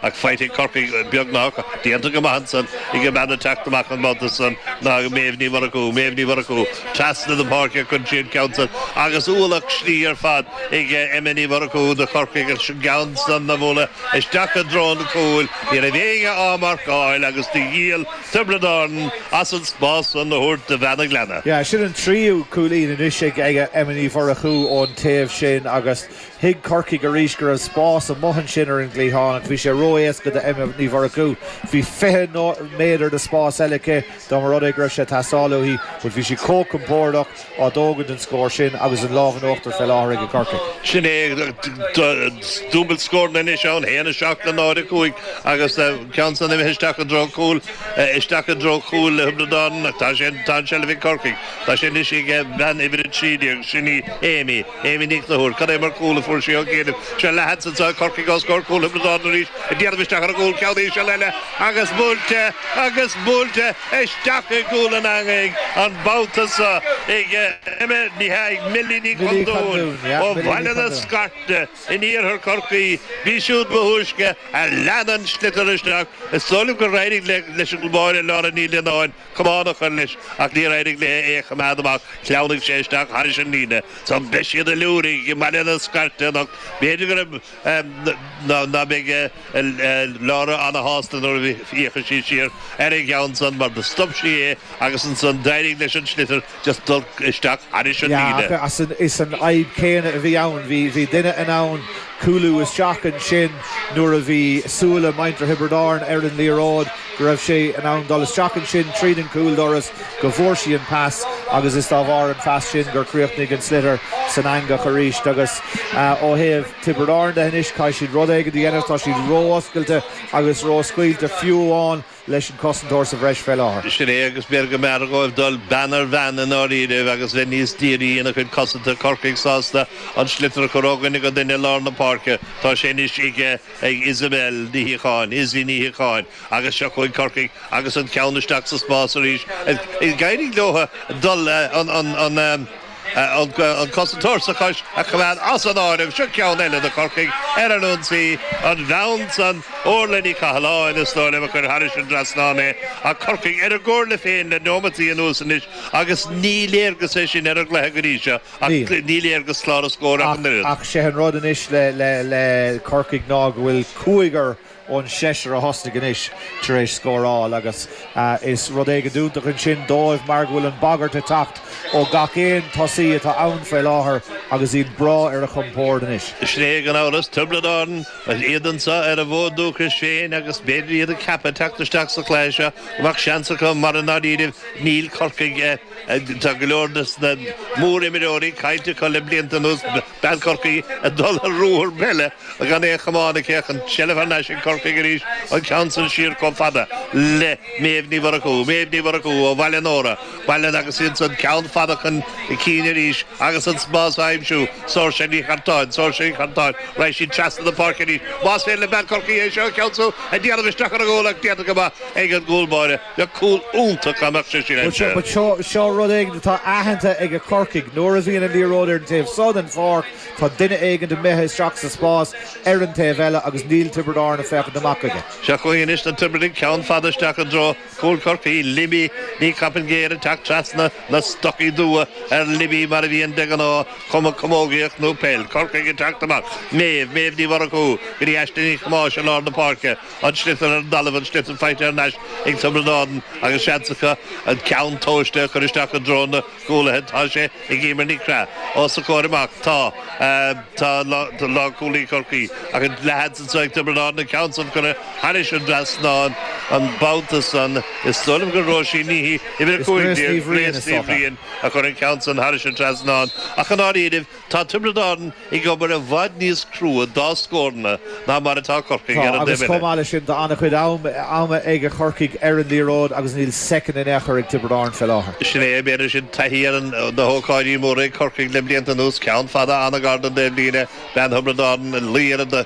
Ach faighte ag Corcaigh beagnach déanta go maith ansan ag an mbean ag teacht amach an babhta san, ná ag Méabh Ní Mhurchú, Méabh Ní Mhurchú, trasna na páirce a chuireann sí an ceann san, agus ualach slí ar fad ag Emma Ní Mhurchú do Chorcaigh agus an ceann san á bhualadh isteach i dtreo an chúil. Ní raibh éinne á marcáil agus do dhíol Tiobraid Árann as an spás san a thabhairt do bhean an Ghleanna. Sin an tríú cúilín anois ag Emma Ní Mhurchú ón taobh sin agus Thuig Corcaigh arís go raibh spás amuigh ansin ar an gcliathán ach bhí sé ró-éasca do Emma Ní Mhurchú. Bhí fiche méadar de spás eile aici dá mba rud é go raibh sé ag teastáil uaithi but bhí sí chomh compórdach ag tógaint an scór sin agus an lámh in uachtar fé láthair aige Corcaigh. Sin é dúbailt scóranna anois ann, 1, 7 le 0, 5 agus an ceann san imithe isteach i dtreo cúil, isteach i dtreo chúil Thiobraid Árann ach tá sé, tá an tseilbh ag Corcaigh. Tá sé anois ag bean uimhir 13, sin í Amy. Amy Ní Chonchúir, Cad é mar chúl a fuair sí ó chianaibh. Seo leathsheans ag Corcaigh os comhair cúl Thiobraid Árann arís ag déanamh isteach ar an gcúl ceann íseal eile agus buailte agus buailte isteach i gcúl an eangaigh an babhta seo ag Emma Ní hAodh, Millie Ní Chondúin ó Bhaile na Scairte in iarthar Chorcaí. B'í siúd ba thúisce a lean an sliotar isteach. Is dóigh liom gur éirigh leis an mbáire Laura Ní Lionnáin. camán a chur leis, ach níor éirigh léi é a choimeád amach, shleamhnaigh sé isteach thairis an líne. So beidh siad ag liúirigh i mBaile na Scairte anocht. B'fhéidir go raibh ná ná beidh Laura ana-shásta nuair a fhéachfaidh sí siar ar an gceann san, mar do stop sí é agus ansan d'éirigh leis an sliotar just dul isteach thairis an líne. Yeah, ach is an fhadhb céanna a bhí ann. Bhí duine in ann cúlú isteach ansin nuair a bhí súile muintir Thiobraid Árann ar an liathróid, go raibh sé in ann dul isteach ansin tríd an gcúldoras, go bhfuair sí an pas agus is dá bharr an phas sin gur chríochnaigh an sliotar san eangach arís. Agus ó thaobh Tiobraid Árann de anois, caithfidh siad rud éigin a dhéanamh. Tá siad ró-oscailte agus ró-scaoilte fiú amháin. leis an cosantóir sa bhreis fé láthair. Sin é agus b'fhearr go mór dhóibh dul bean ar bhean i ndáiríribh agus bheith níos dírí ina gcuid cosanta Corcaigh sásta an sliotar a chur ó dhuine go duine i lár na páirce. Tá sé anois aige ag Isabel Ní Shíocháin, Izzy Ní Shíocháin, agus seo chugainn Corcaigh agus an ceann isteach sa spás arís. Is d'éirigh leo dul an. An cosantóir sa bhreis a choimeád as an áireamh seo ceann eile do Chorcaigh ar an ionsaí, an bhean san Orlaith Ní Chathalláin, is dóigh liom a chuir thairis an trasnán é, ach Corcaigh ar a gcomhairle féin le neomataí anuas anois agus ní léargas é sin ar an gcluiche go dtí seo ach ní léargas clár na scór ach an oiread. Ach sé an rud anois le Corcaigh ná go bhfuil cúigear ón seisear a thosnaigh anois tar éis scóráil agus is rud éigin tábhachtach ansin dóibh mar go bhfuil an bhagairt ag teacht ó gach aon tosaí atá ann faoi láthair agus iad breá ar a chompord anois. Is léir gan amhras Tiobraid Árann agus iad anseo ar a bhfód dúchais féin agus b'fhéidir iad ag ceapadh teacht isteach sa chluiche seo go mbeadh seans acu mar i ndáiríribh níl Corcaigh Tá go leor de na mór-imreoirí caillte acu le blianta anuas, bean Chorcaí ag dul ar ruathar eile gan aon chamán aici ach an tseilbh thar n-ais ag Corcaigh arís, an ceann san siar chomh fada le Méabh Ní Mhurchú. Méabh Ní Mhurchú ó Bhaile Nóra, Baile'n agus ansan ceann fada chun cinn arís agus an spás á aimsiú. Sorcha Nic Cartáin, Sorcha Nic Cartáin, raghaidh sí trasna na páirce arís más féidir le bean Chorcaí é seo a cheansú, ag déanamh isteach ar an gcúl ach déanta go maith ag an gcúl báire. Bheadh cúl iontach dá mbeadh sé sin aimsithe. But seo rud éigin atá aitheanta ag Corcaigh. Nuair a bhíonn an liathróid ar an taobh so den pháirc, tá duine éigin imithe isteach sa spás ar an taobh eile agus níl Tiobraid Árann ag féachaint amach chuige. Seo chugainn anois na Tiobradaigh, ceann fada isteach i dtreo chúl Chorcaí, Libby Ní Coppinger ag teacht trasna na stocaí dubha ar Libby mar a bhíonn de ghnáth, cuma camógaíocht nó peil. Corcaigh ag teacht amach. Méabh, Méabh Ní Mhurchú go dtí Aisling Ní Chamáis i lár na páirce. An sliotar ar an dtalamh, an sliotar faighte thar n-ais ag Tiobraid Árann agus seans acu an ceann tomhaiste a chur isteach i dtreo na gcúlaithe. Tá sé ag Eimear Nic Craith. Os a comhair amach tá lánchúlaí Chorcaí ach an leathsheans so ag Tiobraid Árann, an ceann san curtha thairis an trasnán an babhta san. Is dóigh liom gur Róisín Ní Uimhir 15, Grace Ní Bhriain, a chur an ceann san thairis an trasnán ach i ndáiríribh, Tá Tiobraid Árann ag obair i bhfad níos crua dá scóranna ná mar atá Corcaigh, Tá, agus chomh maith leis sin, tá an-chuid ama ag Corcaigh ar an liathróid agus níl soicind in aon chor ag Tiobraid Árann fé láthair. Sin é an méid ansin, taithí ar na hócáidí móra ag Corcaigh le blianta anuas, ceann fada an-ghar don taobhlíne, bean Thiobraid Árann, luí ar an.